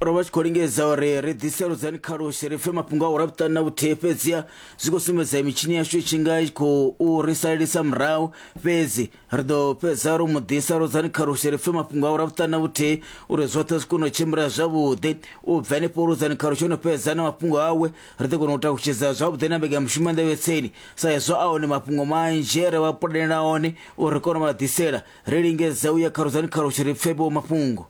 ro vha tshi khou lingedza uri ri ḓise ludzani khalushi ri pfe mafhungo a u rabutani na vhuthihi fhedziha zwi khou sumbedza mitshini yashu i tshi nga i khou ri salelisa murahu fhedzi ri ḓo fhedza ro mu ḓisa ludzani khalushi ri pfe mafhungo a u rabutani na vhuthihi uri zwoṱhe zwi kone u tshimbila zwavhuḓi u bva henefho ludzani khalushi o no fhedza na mafhungo awe ri ḓo kona u takutshedza zwavhuḓi na mbekanyamushumo ya nḓevhetseni sa hezwo a hone mafhungo manzhi e re vha pulanela one uri ri kone u vha ḓisela ri lingedza u ya kharudzani khalushe ri pfe vho mafhungo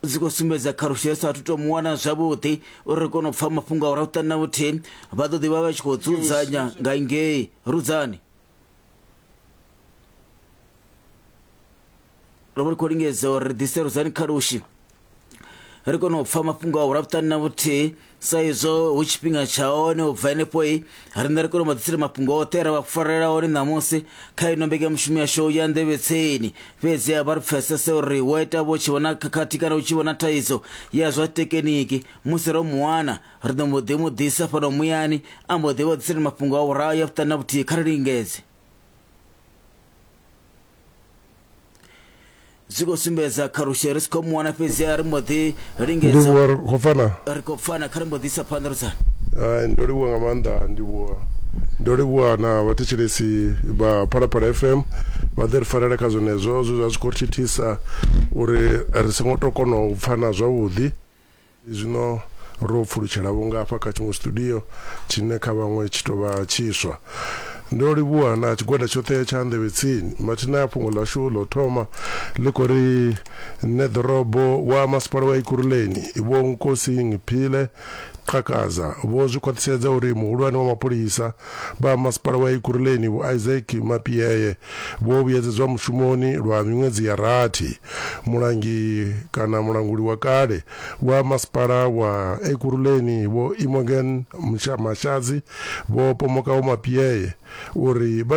dzi khou sumbedza khalushe ri saathu to mu wana zwavhuḓi uri ri kone u pfa mafhungo a u rahuṱani na vhuthihi vha ḓo ḓivha vha tshi khou dzudzanya nga ngei rudzani ro vha ri khou lingedza uri ri ḓise ruzani kha lushi ri kone u pfa mafhungo a vhulafutani na vhuthihi sa izwo hu tshifhinga tsha hone u bva henefhoi riṋe ri kone u vha ḓisela mafhungo oṱhe ra vha farela hone ṋamusi kha ino mbekanyamushumo yashu ya ndevhetseni fhedzi a vha ri pfesese uri wo ita vho tshi vhona khakhathi kana u tshi vhona thaidzo ya zwa tekiniki musi ro muwana ri ḓo mbo ḓi mu ḓisa fhano muyani a mbo ḓi vha ḓisela mafhungo a vhuraya vhuṱani na vhuthihi kha ri lingedze zwi khou sumbedza kha rushe ri si khou muwana fhedzi a ri mbo ḓi lingedza ri khou pfana ri khou pfana kha ri mbo ḓi isa phanḓa rusa ndo livhuwa nga maanḓa ndivhuwa ndo livhuwa na vhathetshelesi vha phalaphala fm vha ḓe ri farela kha zwenezwo zwe zwa zwi khou thithisa uri ri songo to kona u pfana zwavhuḓi Zwino ro pfulutshela vho ngafha kha tshiṅwe studio tshine kha vhaṅwe tshi tou vha tshiswa. Ndo livhuha na tshigwada tshoṱhe tsha Nḓevhe Tsini. Mathina a fhungo ḽashu ḽa u thoma ḽi khou ri, Neḓorobo wa Masipala wa Ekurhuleni, Vho Nkosing Phile Qhakaza, vho zwi khwaṱhisedza uri muhulwane wa mapholisa Vha Masipala wa Ekurhuleni Vho Isaac Mapiyeye vho vhuyedzedzwa mushumoni lwa miṅwedzi ya rathi. Mulangi kana mulanguli wa kale wa Masipala wa Ekurhuleni Vho Imogen Mashadzi vho pomoka Vho Mapiyeye uri vha na